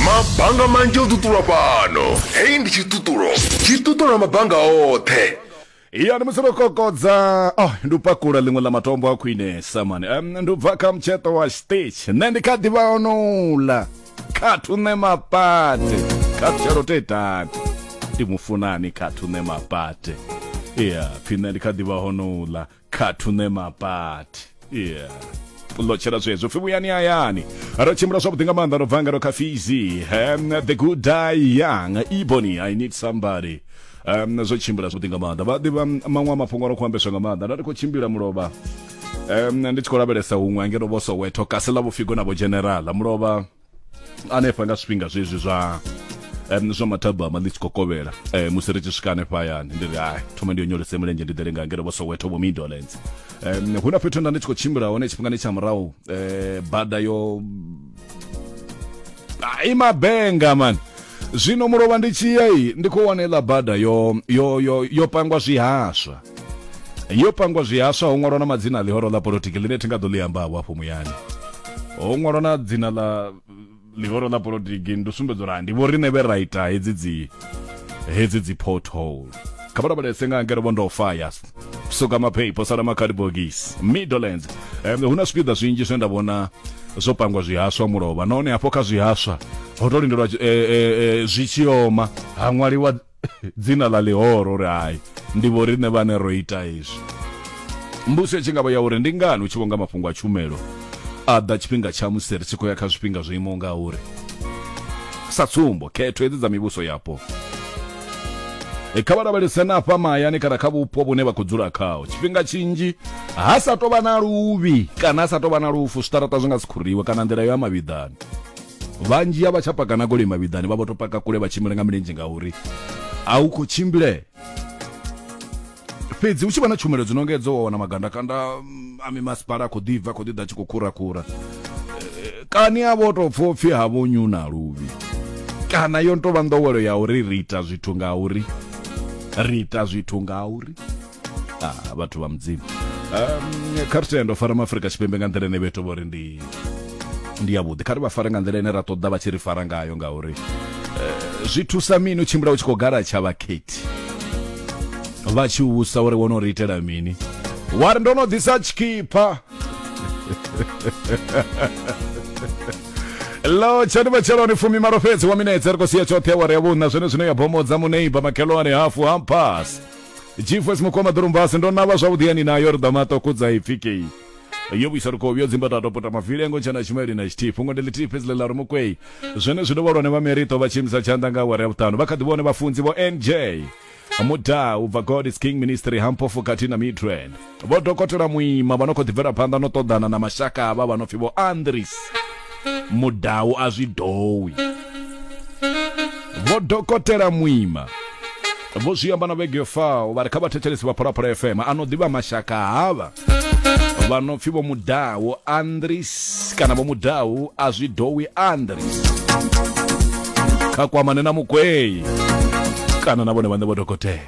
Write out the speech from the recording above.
mabanga manzhi o ṱuṱulwa fhano heyi ndi tshiṱuṱulo tshi ṱuṱula mabanga oṱhe ya ndi musi ro kokodza oh, ndi u pakula ḽiṅwe ḽa matombo a khwinesa mani um, ndi u bva kha mutsheṱo wa stitch nṋe ndi kha ḓivha onouḽa khathu nṋe mapate khathu tshelo te tati ndi mufunani khathu nṋe mapate ya pfi nṋe ndi kha ḓivha honouḽa kha thune mapati yeah lotshela zwezwo pfi vhuyani hayani ro tshimbila zwavhuḓi nga maanḓa ro bva nga ro kha fizi um, the good die young ebony i need somebody um, zwo tshimbila zwavhuḓi nga maanḓa vha ḓivha maṅwe a mafhungo ro khou ambeswa nga maanḓa nda ndi khou tshimbila mulovha um, ndi tshi khou lavhelesa huṅwe angeno vho soweto kasi ḽa vhufigo na vho generala mulovha hanefha nga zwifhinga zwezwi zwa um, zwa mathabama ḽi tshi khou kovhela um, musi ri tshi swika hanefha hayani ndi ri hai thoma ndi yo nyolese mulenzhe ndi ḓele nga ngeno vho soweto vho midolands um, hu na fhethu nda ndi tshi khou tshimbila hone tshifhingani tsha murahu um, bada yo ai mabenga mani zwino mulovha ndi tshiya iyi ndi khou wana iḽa bada yo yo yo yo pangwa zwihaswa yo pangwa zwihaswa ho ṅwalwa na madzina a ḽihoro ḽa polotiki ḽine thi nga ḓo ḽi ambavho afho muyani ho ṅwalwa na dzina ḽa ḽihoro ḽa polotiki ndi sumbedza uri ndi vho riṋe vhe ra ita hedzi dzi hedzi dzi pothole kha vha lavhelese nga ngere vho ndo faya suka mapheipo sala makhadi bogisi middlelands um, hu na zwipiḓa zwinzhi zwine nda vhona zwo pangwa zwihaswa mulovha nahone hafho kha zwihaswa ho to lindelwa eh, eh, eh, zwi tshi oma ha ṅwaliwa dzina ḽa ḽihoro uri hai ndi vho riṋe vhane ro ita izwi mbuso tshi ngavha ya uri ndi ngani u tshi vhonga mafhungo a tshumelo a ḓa tshifhinga tsha musi ri tshi khou ya kha zwifhinga zwo imaho nga uri sa tsumbo khetho hedzi dza mivhuso yapo e, kha vha lavhelese na afha mahayani kana kha vhupo vhune vha khou dzula khao tshifhinga tshinzhi ha sa tou vha na luvhi kana ha sa tou vha na lufu zwiṱaraṱa zwi nga si khuriwe kana nḓila yo ya mavhiḓani vhanzhi a vha tsha paka na goloi mavhiḓani vha vho to paka kule vha tshimbile nga milenzhe ngauri a u khou tshimbile fhedzi hu tshi vha na tshumelo dzi nonga edzo wa wana magandakanda mm, a mimasipala a khou ḓi bva khou ḓi ḓa tshi khou khurakhura Eh, kani a vho tou pfa upfi ha vho nyu na luvhi kana yo ntovha nḓowelo ya uri ri ita zwithu nga uri ri ita zwithu nga uri ah, vhathu vha mudzimu um, kha ri tendo fara maafurika tshipembe nga nḓila ine vheto vho ri ndi ndi yavhuḓi kha ri vha fare nga nḓila ine ra ṱoḓa vha tshi ri fara ngayo ngauri eh, zwi thusa mini u tshimbila u tshi khou gala tsha vhakhethi vha tshi usa uri wo no ri itela mini wa ri ndo no ḓisa tshikhipa lo tshani matsheloni fumi malo fhedzi wa minetse ri khou sia tshoṱhe awara ya vhuṋa zwone zwino ya bomodza muneiba makhelwane hafu hampasi gfs mukoma ḓulumbasi ndo navha zwavhuḓi yani nayo ri ḓa maṱoko dza ipfikei yo vhuisa lukovhi yo dzimba tato puta mavili engo tshena tshimeli na tshithihi fhungo ndi ḽithihi fhedzi ḽe ḽa ri mukwei zwene zwi dovha lwane vha merito vha tshiimisa tshanḓa nga awara ya vhuṱanu vha kha ḓi vhone vhafunzi vho nj muda ubva god is king ministry hamphofu khathihi na midrand vho dokotela muima vha no khou ḓibvela phanḓa no ṱoḓana na mashaka avha vha no pfi vho andris mudau a zwi dowi vho dokotela muima vho zwi amba na vhege yo faho vha ri kha vhathetshelesi vha pholaphola fm a no ḓivha mashaka havha vha no pfi vho mudau andris kana vho mudau a zwi dowi andris kha kwamane na mukweyi kana na vhone vhaṋe vho dokotela